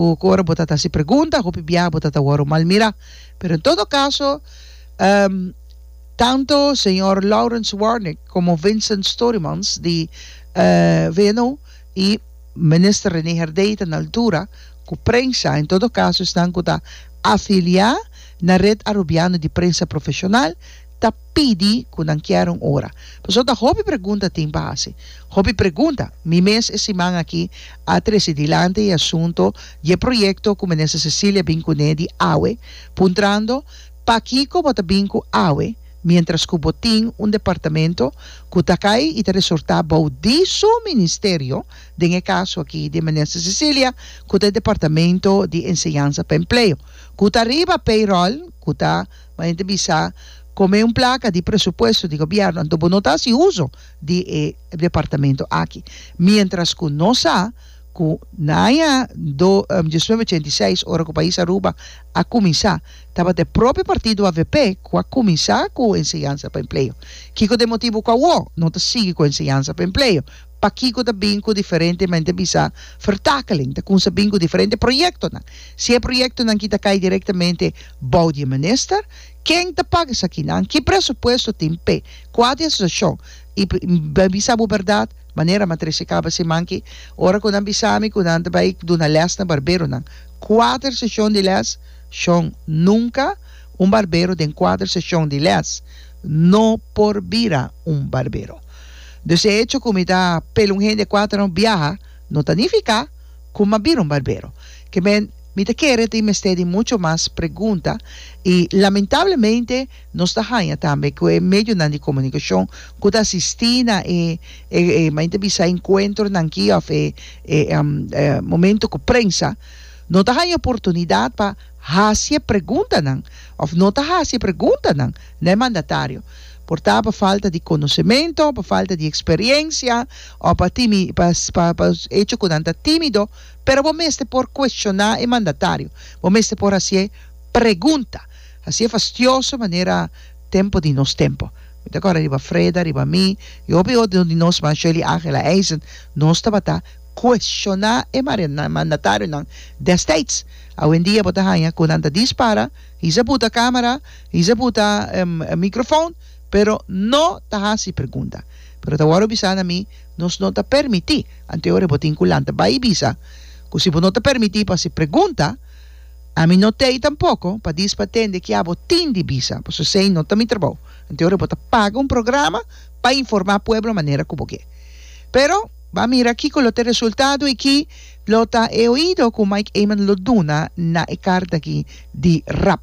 Hopi ora bo ta ta hasi pregunta, hopi biaha bo ta ta wòrdu malmirá. Pero en todo kaso, tantu señor Lawrence Warnik komo Vincent Storymans di VNO i Minister Rene Herdey ta na altura ku prensa, en todo kaso esnan ku ta afiliá na Red Arubiano di Prensa Profeshonal, ta pidi cu nan kier un ora. Pasobra ta hopi pregunta tin pa haci. Hopi pregunta. Mi mes e siman aki a trece dilanti e asunto di e proyecto cu Minister Cecilia bin cune di awe, puntrando, Pakico bo ta bin cu awe, mientras cu bo tin un departamento cu ta cay y ta resorta bao di su Ministerio, den e caso aki di Minister Cecilia, cu ta e Departamento di Enseñansa pa Empleo, cu ta riba payroll cu ta. Ma hende bisa, Como e un placa di presupuesto di gobierno, anto bo no ta haci uzo di e departamento aki. Mientras cu nos sa cu na aña do diecinueve ochenta y seis, ora cu pais Aruba a cuminsa, tabata e propio partido avp cu a cuminsa cu enseñansa pa empleo. Kico ta e motibo cu awo no ta sigui cu enseñansa pa empleo? Pakico ta bin cu diferente, men ta bisa, vertakeling? Ta cunsa bin cu diferente proyectonan? Si e proyectonan ki ta cay directamente Bou di e minister, ken ta paga esakinan? Ki presupuesto tin p'e kua di asosiashon? I mi a bisa bo bèrdat, manera Matrice kaba si manki, ora ku nan bisa mi ku nan ta bai duna lès na barberonan, kuater seshon di lès, shon, nunka un barbero den kuater seshon di lès no por bira un barbero. Dus e hecho ku mi ta pela un hende kuater no biaha no ta nifiká ku mi a bira un barbero. Ke men. Mi ta kere tin mester di mucho mas pregunta y lamentablemente nos ta haña tambe cu e medionan di comunicacion cu ta asisti na e e men ta bisa encuentronan aki of e e momento cu prensa no ta haña oportunidad pa haci e preguntanan of no ta haci e preguntanan na e mandatario por ta pa falta di conocemento, pa falta di experiencia o pa timi pa pa hecho cu nan ta timido. Pero bo mester por cuestioná e mandatario. Bo mester por hacié pregunta. Hacié fastioso manera tempo di nos tempo. Mi ta corda riba Freda, riba mi y hopi otro di nos mas, Shirley Angela Eisen, nos tabata cuestioná e mandatarionan destids. Awendia bo ta haña cu nan ta dispara, hiz'a buta camera, hiz'a buta microfoon, pero no ta haci pregunta. Pero ta wordo bisá na mi Nos no ta permití. Anto e ora bo tin ku lanta bai i bisa ku si bo no ta permití pa si pregunta, ami no t'ei tampoko pa dis pa tende kia bo tin di bisa, pasobra esei no ta mi trabou. Anto e ora bo ta paga un programa pa informá pueblo manera ku bo ke. Pero b'a mira kiko lo ta e resultado i ki lo ta e oido ku Mike Eman lo duna na e karta aki di rap.